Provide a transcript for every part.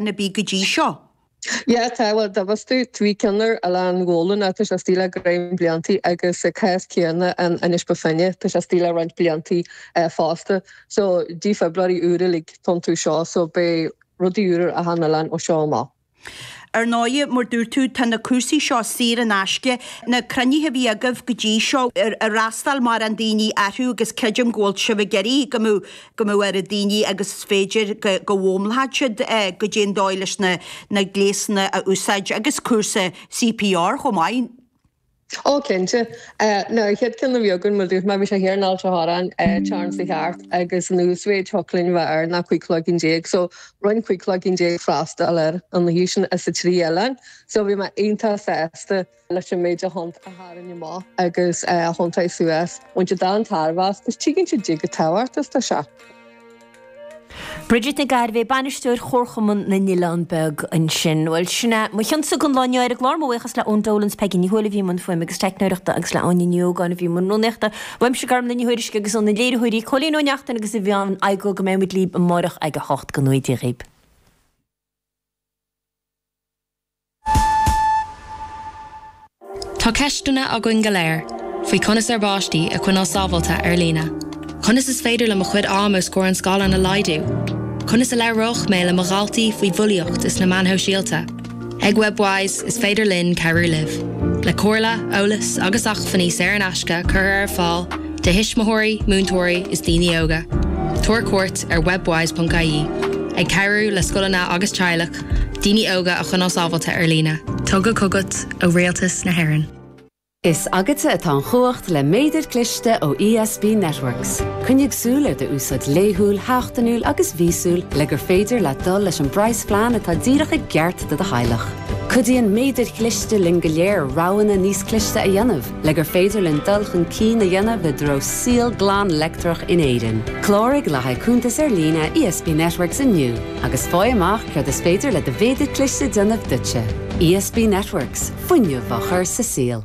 a bhí go dtí seo? Yeah, tá, bhuel, tá a fhios agat, bhí ceann ar Oileán Ghabhla, tá sé istigh le roinnt bliantaí agus sa chás céanna in Inis Bó Finne, tá sé istigh le roinnt bliantaí fosta. So, dífhibrileoirí úra uilig atá iontu seo, so beidh rudaí úra ar achan oileán ó seo amach. Ar ndóigh, mar a dúirt tú, tá na cúrsaí seo saor in aisce. Na cruinnithe a bhí agaibh go dtí seo, ar fhreastail mórán daoine orthu agus creidim go bhfuil sibh ag iarraidh go mbeadh go mbeadh a oiread daoine agus is féidir go bhfoghlaimeodh siad goidé an dóigh leis na gléasanna a úsáid agus cúrsa CPR chomh maith. Ó, cinnte. Ó, an chéad cheann a bhí againn, mar a dúirt mé, bhí sé thiar in Ailt a' Chorráin, Déardaoin seo thart, agus an uasmhéid a thiocfadh linn a bheith air ná 15 cloigeann, so rinne 15 cloigeann freastal ar an oíche sin as a trí oileáin, so bhí mé iontach sásta. leis an méid daoine a tháinig amach agus a thiontaigh suas. Bhain siad an-tairbhe as agus tuigeann siad goidé chomh tábhachtach is atá seo. Bridget Nic Gairbhigh, Bainisteoir Chomharchumann na nOileán Beag ansin. Bhuel, sin é mo chionsa don lá inniu ar an gclár. Mo bhuíochas le Eoin Dolan 's Peigí Ní Thuairisg a bhí i mbun fuaime agus teicneolaíochta agus le Áine Ní Ógáin a bhí i mbun rúnaíochta. Uaimse Carmel Ní Thuairisg agus ó na léiritheoirí Cóilín Ó Neachtain agus mé féin, go mbeimid libh amáireach ag a hocht go ngnóthaí Dia daoibh. Tá ceisteanna againn go léir faoi conas ár bpáistí a choinneáil sábháilte ar líne. Conas is féidir liom mo chuid ama os comhair an scáileáin a laghdú? Conas a labhróidh mé le mo dhaltaí faoi bhulaíocht is na meáin shóisialta? Ag Webwise, is féidir linn cabhrú libh, le comhairle, eolas agus acmhainní saor in aisce curtha ar fáil do thuismitheoirí, múinteoirí is daoine óga. Tabhair cuairt ar webwise.ie, ag cabhrú le scoileanna agus teaghlaigh. Daoine óga a choinneáil sábháilte ar líne. Tugtha chugat ó Rialtas na hÉireann. Is agatsa atá an chumhacht le méadar cliste ó ESB Networks. Coinnigh súil ar d'úsáid laethúil, sheachtainiúil agus mhíosúil le gur féidir leat dul leis an bpraghas phlean atá díreach i gceart do do theaghlach. Cuidíonn méadair chliste linn go léir roghanna níos cliste a dhéanamh le gur féidir linn dul chun cinn a dhéanamh i dtreo saol glan leictreach in Éirinn. Cláraigh le haghaidh cuntas ar líne ESB Networks inniu. agus faigh amach céard is féidir le do mhéadar cliste a dhéanamh duitse. ESB Networks, fuinneamh á chur sa saol.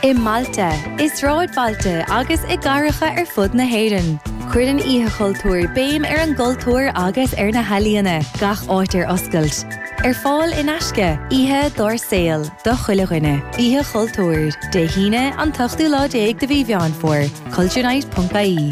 I mbailte, i sráidbhailte agus i gcathracha ar fud na hÉireann, cuireann Oíche Chultúir béim ar an gcultúr agus ar na healaíona, gach áit ar oscailt. Ar fáil in aisce, oíche dár saol do chuile dhuine. Oíche Chultúir, Dé hAoine, an t-ochtú lá déag de mhí Mheán Fómhair, culturenight.ie.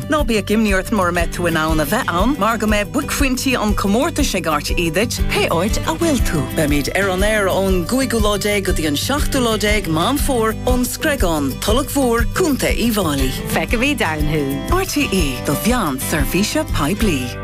Ná bíodh imní ort mura mbeidh tú in ann a bheith ann mar go mbeidh buaicphointí an chomórtais ag RTÉ duit pé áit a bhfuil tú. Beimid ar an aer ón gcúigiú lá déag go dtí an seachtú lá déag Meán Fómhair ón Screigán, Tulach Mhór, Contae Uíbh Fháilí. Feicfimid ann thú. RTÉ, do mheán seirbhíse poiblí.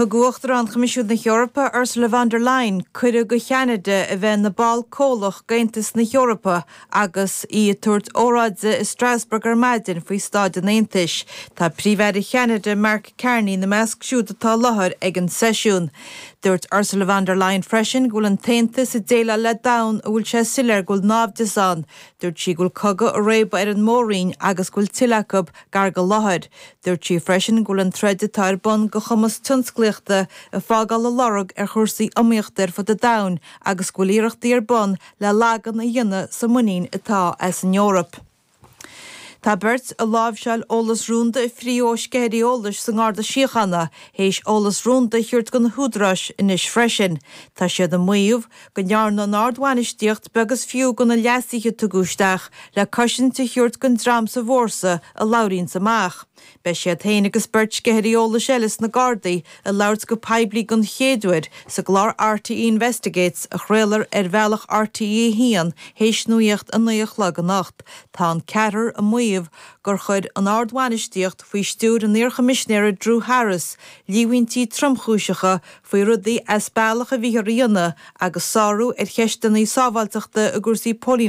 Thug Uachtarán Choimisiún na hEorpa, Ursula von der Leyen, cuireadh do Cheanada a bheith ina ball comhlach d'Aontas na hEorpa agus í ag tabhairt óráide i Strasbourg ar maidin faoi Staid an Aontais. Tá Príomh-Aire Cheanada, Mark Carney, ina measc siúd atá i láthair ag an seisiún. Dúirt Ursula von der Leyen freisin go bhfuil an tAontas ag déileáil le domhan a bhfuil sé soiléir go bhfuil náimhdeas ann. Dúirt sí go bhfuil cogadh ag réabadh ar an Mór-Roinn agus go bhfuil tuilleadh achair ag an láthair. Dúirt sí freisin go bhfuil an troid atá ar bun do chumas tionsclaíochta ag fágáil a lorg ar chúrsaí iomaíochta ar fud an domhain agus go bhfuil iarrachtaí ar bun le lagú a dhéanamh sa muinín atá as an Eoraip. Tá beirt a láimhseáil eolas rúnda a fríth ó sceithirí eolais sa nGarda Síochána théis eolas rúnda a thabhairt do na húdaráis anois freisin. Tá siad ag maíomh go ndearna an ardbhainistíocht beag is fiú de na leasuithe a tugadh isteach le cosaint a thabhairt don dream sa bhfórsa a labhraíonns amach. Beidh siad féin agus beirt sceithirí eolais eile sna Gardaí ag labhairt go poiblí den chéad uair sa gclár RTÉ Investigates a chraolfar ar bhealach RTÉ a hAon théis nuacht a naoi a chlog anocht. Tá an ceathrar ag maíomh gur chuir an ardbhainistíocht, faoi stiúir an iarchoimisinéara Drew Harris, líomhaintí tromchúiseacha faoi rudaí as bealach a bhíothar a dhéanamh, agus sárú ar cheisteanna sábháilteachta i gcúrsaí póilíneachta.